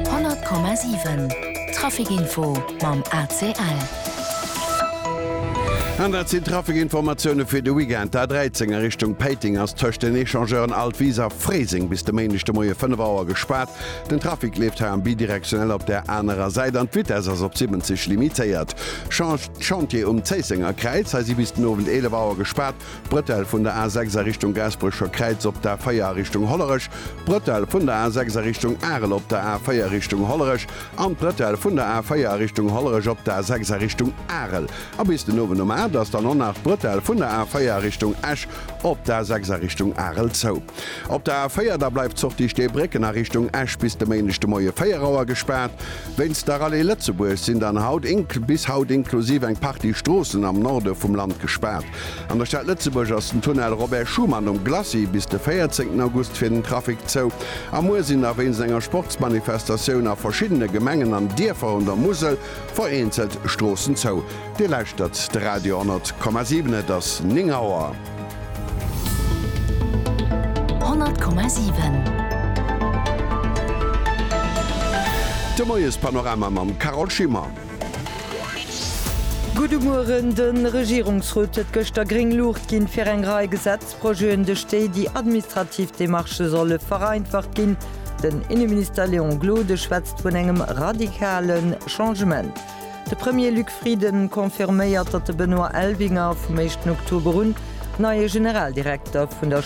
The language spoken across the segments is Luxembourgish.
100,7 Trafikinfo mam ACL. An dat sinn d'Trafikinformatioune fir de Weekend. D'A13 a Richtung Péiteng ass tëscht den Echangeuren Altwis a Fréiseng bis de Méindeg de Moie 5 Auer gespaart. Den Trafic leeft hei am Bidirektionell op der anerer Säit an d'Vitess ass op 70 limitéiert. Change d'Chantier um Zéissenger Kräiz, hei si bis den Owend 11 Auer gespaart. D'Brëtell vun der A6 a Richtung Gaasperecher Kräiz op d'A 4 a Richtung Hollerech, d'Brëtell vun der A6 a Richtung Arel op der A 4 a Richtung Hollerech an d'Brëtell vun der A 4 a Richtung Hollerech op d'A 6 a Richtung Arel. A bis den Owend um 8 ass dann och nach d'Brëtell vun der A 4 a Richtung Esch op d'A 6 a Richtung Arel zou. Op der A 4 da bleift d'Sortie Steebrécken a Richtung Esch bis de Méindeg de Moie 4 Auer gespaart. Wéinst der Rallye Lëtzebuerg sinn dann haut bis haut inklusiv eng Partie Stroossen am Norde vum Land gespaart. An der Stad Lëtzebuerg ass den Tunnel Robert Schuman um Glacis bis de 14 August fir den Trafic zou. A muer sinn nach wéinst enger Sportsmanifestatioun a verschiddene Gemengen an Dierfer un der Musel vereenzelt Stroossen zou. Dir lauschtert de Radio 10,7. Et ass 9 Auer. 10,7. De Moiespanorama mam Carole Schimmer. Gudde Mueren, De Regierungsrot huet gëschter gréng Luucht ginn, fir eng Rei Gesetzprojeten, duerch déi déi administrativ Demarchë solle vereinfacht ginn. Den Inneminister Léon Gloden schwätzt vun engem radikale Changement. De Premier Luc Frieden confirméiert, datt de Benoît Elvinger vum éischten Oktober un neie Generaldirekter vun der.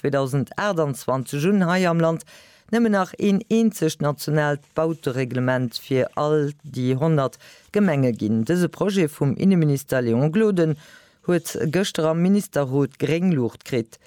2028 un hei am Land nëmmen nach een eenzegt nationaalt Bautereglement fir all déi 100 Gemenge ginn. Dëse Projet vum Inneminister Léon Gloden huet gëschter am Ministerrot gréng Luucht kritt.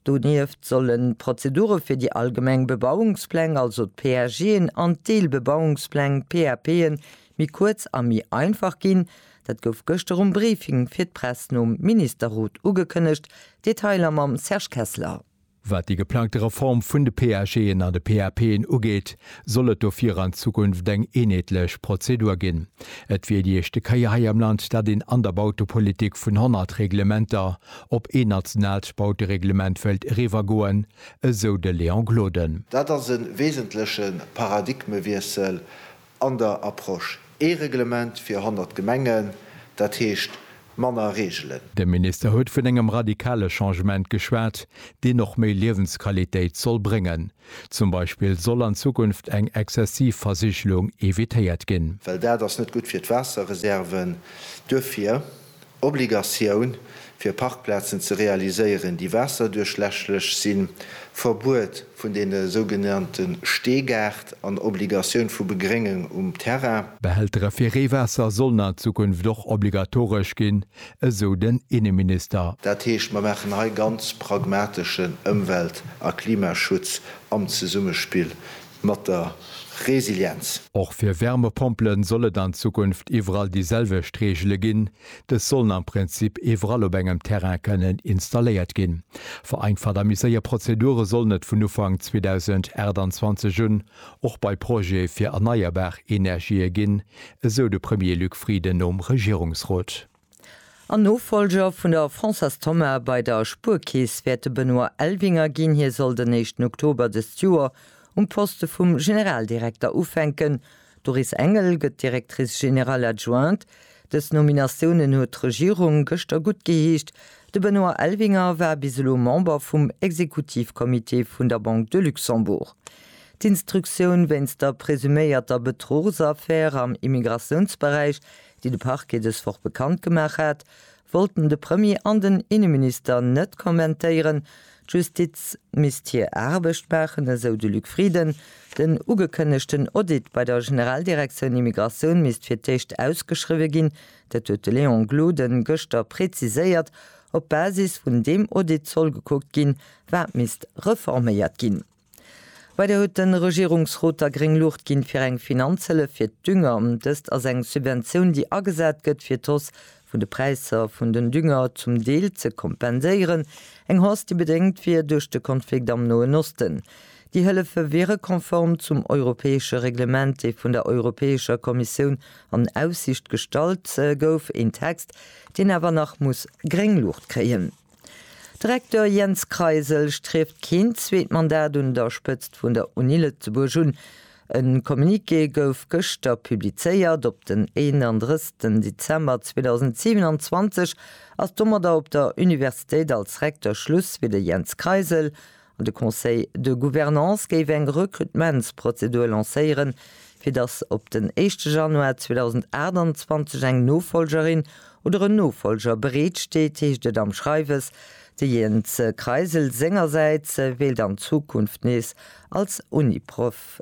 Donieft sollen d'Prozedure fir déi allgemeng Bebauungspläng, also d'PAGen, an d'Deelbebauungspläng, PAPen, méi kuerz a méi einfach ginn. Dat gouf gëschter um Briefing fir d'Press nom Ministerrot ugekënnegt. Detailer mam Serge Kessler. Wat déi geplangte Reform vun de PAGen an de PAPen ugeet, soll et dofir an Zukunft eng eenheetlech Prozedur ginn. Et wier déi éischte Kéier hei am Land, dat een an der Bautepolitik vun 100 Reglementer op een nationaalt Bautereglement wëilt eriwwergoen, esou de Léon Gloden. Dat ass e wesentleche Paradigmewiessel An der Approche ee Reglement fir 100 Gemengen, dat heescht manner Reegelen. De Minister huet vun engem radikale Changement geschwat, deen och méi Liewensqualitéit soll bréngen. Zum Beispill soll an Zukunft eng exzessiv Versigelung evitéiert ginn. Well dat ass net gutt fir d'Waasserreserven. Duerfir. Obligatioun, fir Parkplazen ze realiséieren, déi waasserduerchläschlech sinn, Verbuet vun deene sougenannte Steegaart an Obligatioun vu Begréngung um Terrain. Behältere fir Reewaasser sollen an Zukunft och obligatoresch ginn, esou den Inneminister. Dat heescht, mer maachen hei ganz pragmateschen Ëmwelt a Klimaschutz am Zesummespill mat der Resilienz. Och fir Wärmepompele soll et an Zukunft iwwerall déi selwecht Reegele ginn. Dës sollen am Prinzip iwwerall op engem Terrain kënnen installéiert ginn. Vereinfacht a méi séier Prozedure sollen et vun Ufank 2028 un och bei Projete fir erneierbar Energië ginn, esou de Premier Luc Frieden nom Regierungsrot. En Nofolger vun der Françoise Thomas bei der Spuerkeess wäert de Benoît Elvinger ginn. Hie soll den éischten Oktober dëst Joer um Poste vum Generaldirekter ufänken. D'Doris Engel gëtt Directrice générale adjointe. Dës Nominatiounen huet d'Regierung gëschter guttgeheescht. De Benoît Elvinger war bis elo Member vum Exekutivcomité vun der Banque de Luxembourg. D'Instruktioun wéinst der presuméierter Betrugsaffär am Immigratiounsberäich déi de Parquet dës Woch bekannt gemaach hat, wollten de Premier an den Inneminister net kommentéieren. D'Justiz misst hir Aarbecht maachen, esou de Luc Frieden. Den ugekënnegten Audit bei der Generaldirektioun Immigratioun misst fir d'éischt ausgeschriwwe ginn. Dat huet de Léon Gloden gëschter preziséiert. Op Basis vun deem Audit soll gekuckt ginn, wat misst reforméiert ginn. Weider huet de Regierungsrot da gréng Luucht ginn, fir eng Finanzhëllef fir d'Dünger. Dëst ass eng Subventioun, déi agesat gëtt, fir d'Hausse vun de Präisser vun den Dünger zum Deel ze kompenséieren, eng Hausse, déi bedéngt wier duerch de Konflikt am Noen Osten. Déi Hëllefe wiere konform zum europäesche Reglement, dee vun der Europäescher Kommissioun an Aussicht gestallt gouf, een Text, deen awer nach muss gréng Luucht kréien. De Recteur Jens Kreisel strieft keen zweet Mandat un der Spëtzt vun der Uni Lëtzebuerg un. E Communiqué gouf gëschter publizéiert. Op den 31 Dezember 2027 ass domadder op der Universitéit als Recteur Schluss fir de Jens Kreisel De Conseil de Gouvernance géif eng Recrutementsprozedur lancéieren, fir datt op den éischte Januar 2028 eng Nofolgerin oder en Nofolger bereet steet, heescht et am Schreiwes. De Jens Kreisel sengersäits wéilt an Zukunft nees als Uniprof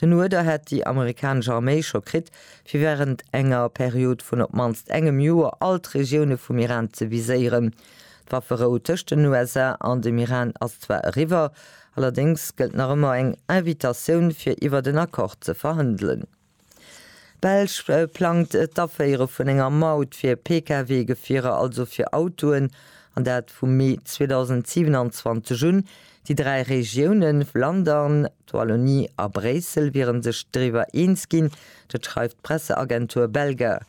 Den Uerder hätt déi amerikanesch Arméi scho kritt, fir wärend enger Period vun op d'mannst engem Joer all d'Regioune vum Iran ze viséieren. D'Wafferou tëscht den USA an dem Iran ass zwar eriwwer, allerdéngs gëllt nach ëmmer eng Invitatioun, fir iwwert en Accord ze verhandelen. D'Belsch plangt d'Aféiere vun enger Maut fir Pkw-Gefierer, also fir Autoen, an dat vu Mee 2027 un. Déi dräi Regioune Flandern, D'Wallonie a Bréissel wiere sech driwwer eens ginn, dat schreift d'Presseagentur Belga.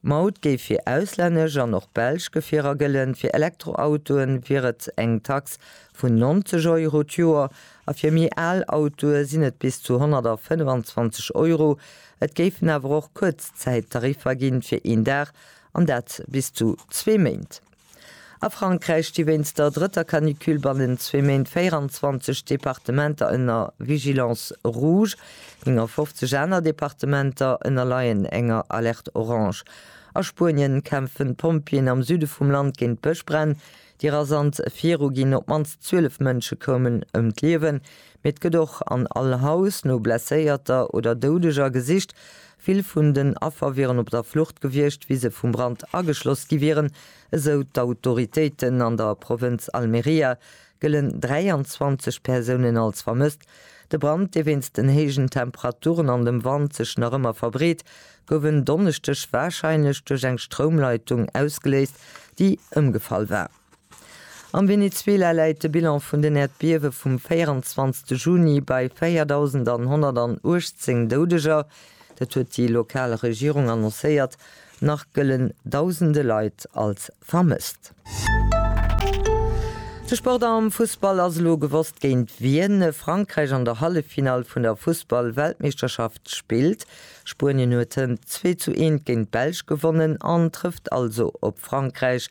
D'Maut géif fir auslännesch an och belsch Gefierer gëllen, fir Elektroautoe wier et eng Tax vun 90 Euro d'Joer a fir méi al Autoe sinn et bis zu 125 Euro. Et géifen awer och Kuerzzäittariffer ginn, fir een Dag, an dat bis zu zwee Méint. A Frankräich sti wéinst der drëtter Canicule bannen zwee Méint 24 Departementer ënner Vigilance rouge, 59 aner Departementer ënnerleien enger Alerte orange. A Spuenien kämpfen d'Pompjeeën am Süde vum Land géint d'Bëschbränn, déi rasant viruginn. Op d'mannst 12 Mënsche koumen ëm d'Liewen, mee et gëtt och an all Haus no Blesséierter oder Doudeger gesicht. Vill vun den Affer wieren op der Flucht gewiescht, wéi se vum Brand ageschloss gi wieren, esou d'Autoritéiten. An der Provënz Almeria gëllen 23 Persounen als vermësst. De Brand, dee wéinst den héijen Temperaturen an dem Wand sech nach ëmmer verbreet, gouf en Donneschdeg warscheinlech duerch eng Stroumleitung ausgeléist, déi ëmgefall war. Am Venezuela läit de Bilan vun den Äerdbiewe vum 24 Juni bei 4.118 Doudeger, dat huet déi lokal Regierung annoncéiert. Nach gëllen dausende Leit als vermësst. De Sport am Fussball, Ass elo gewosst géint wien Frankräich an der Halleffinall vun der Fussball-Weltmeeschterschaft spillt? Spuenien huet hënt zwee zu eent géint d'Belsch gewonnen an trëfft also op Frankräich.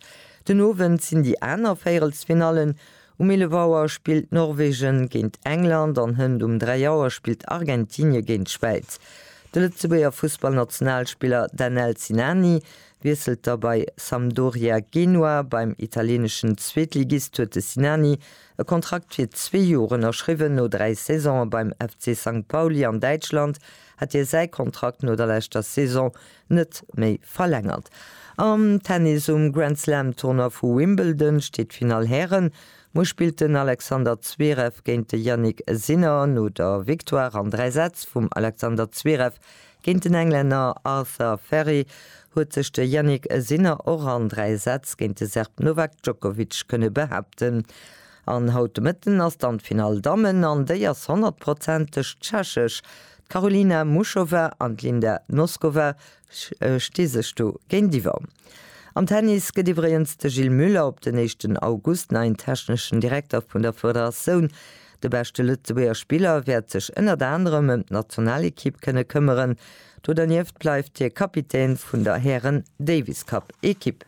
Den Owend sinn déi aner Véierelsfinallen, Um 11 Auer spillt Norwegen géint England an Hënt um 3 Auer spillt Argentinie géint d'Schwäiz. De Lëtzebuerger Fussballnationalspiller Danel Sinani wiesselt da bei Sampdoria Genua. Beim italieneschen Zweetligist huet de Sinani e Kontrakt fir zwee Joer ënnerschriwwen. No dräi Saisone beim FC Sankt Pauli an Däitschland hat hie säi Kontrakt no der leschter Saison net méi verlängert. Am Tennis um Grand Slam Tournoi vu Wimbledon steet d'Finall Hären. Muer spillt den Alexander Zverev géint de Jannik Sinner. No der Victoire an 3 Sätz vum Alexander Zverev géint den Englänner Arthur Ferry huet sech de Jannik Sinner och an 3 Sätz géint de Serb Novak Djokovic kënne behaapten. An haut de Mëtten ass dann d'Finall Dammen an déi ass honnertprozenteg tschechesch. D'Karolina Muchova an d'Linda Noskova sti sech do géintiwwer. Am Tennis gëtt iwwregens de Gilles Muller op den éischten August neien techneschen Direkter vun der Federatioun. De beschte Lëtzebuerger Spiller wäert sech ënnert anerem ëm d'Nationalekipp kënne këmmeren. Do dernieft bleift hie Kapitän vun der Hären-Davis-Cup-Ekipp.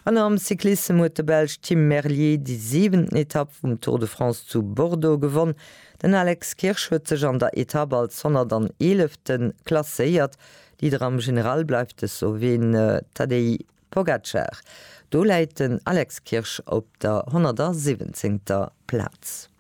An am Cyclissem huet de Belsch Tim Merlier déi siwenten Etapp vum Tour de France zu Bordeaux gewonn. Den Alex Kirsch huet sech an der Etapp als 111. klasséiert. Leader am General bleift de Sloween Tadej Pogacar. Do läit den Alex Kirsch op der 117. Plaz.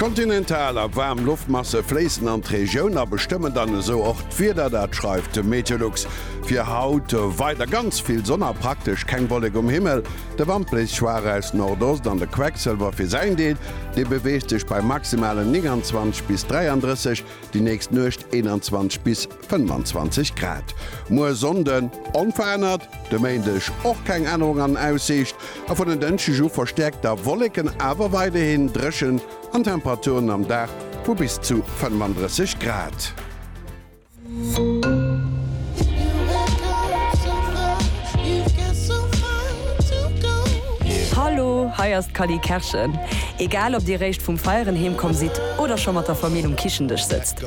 Kontinental a waarm Loftmasse fléissen an d'Regioun a bestëmmen dann esou och d'Wieder. Dat schreift de Meteolux. Fir haut weider ganz vill Sonn a praktesch keng Wollek um Himmel. De Wand bléist schwaach aus Nordost an de Quecksëlwer fir säin Deel, dee beweegt sech bei maximalen 29 bis 33, déi nächst Nuecht 21 bis. 25 Grad. Muer Sonnde onverännert, de Méindeg och keng Ännerung an Aussiicht a vun en Dënschdeg u verstäerkt da Wolleken, awer weiderhin dréchen an Temperaturen am Dag vu bis zu 35 Grad. Hallo, hei ass d'Cally Kerschen. Egal ob dir réischt vum Feieren heemkomm sidd oder scho mat der Famill um Kichendësch sëtzt.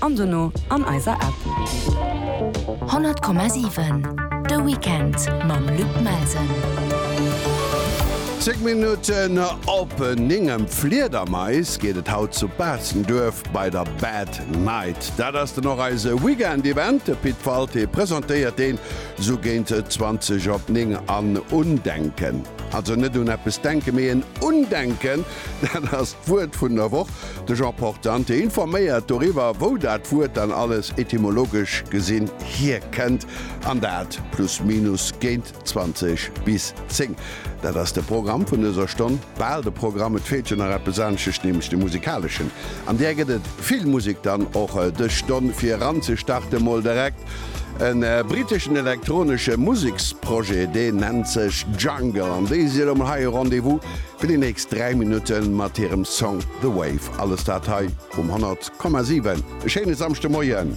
an dono an eiser App. 100,7 De Weekend mam Luc Melsen. Zéng Minutten op néng ëm Fliedermais geet et haut zu Baastenduerf bei der Bad Night. Dat ass den och eise Weekend-Event. De Pit Walté presentéiert deen esou géint 20 op néng. An Undenken, also net un eppes denken, mee en Undenken Dat ass d'Wuert vun der Woch. De Jean Portante informéiert doriwwer, wou dat Wuert dann alles etymologesch gesinn hierkënnt. An dat plus minus géint 20 bis 10. Dat ass de Programm vun dëser Stonn. Bal de Programm, et feelt jo nach eppes aneschteg, nämlech de musikaleschen. An där gëtt et vill Musek dann och dës Stonn. Fir eranzestarten, mol direkt e britteschen elektronesche Museksprojet, deen nennt sech Jungle. An déi si elo mol hei e Rendez-vous. Fir déi nächst 3 Minutte mat hirem Song The Wave. Alles dat hei um 100,7. E schéine Samschdemoien!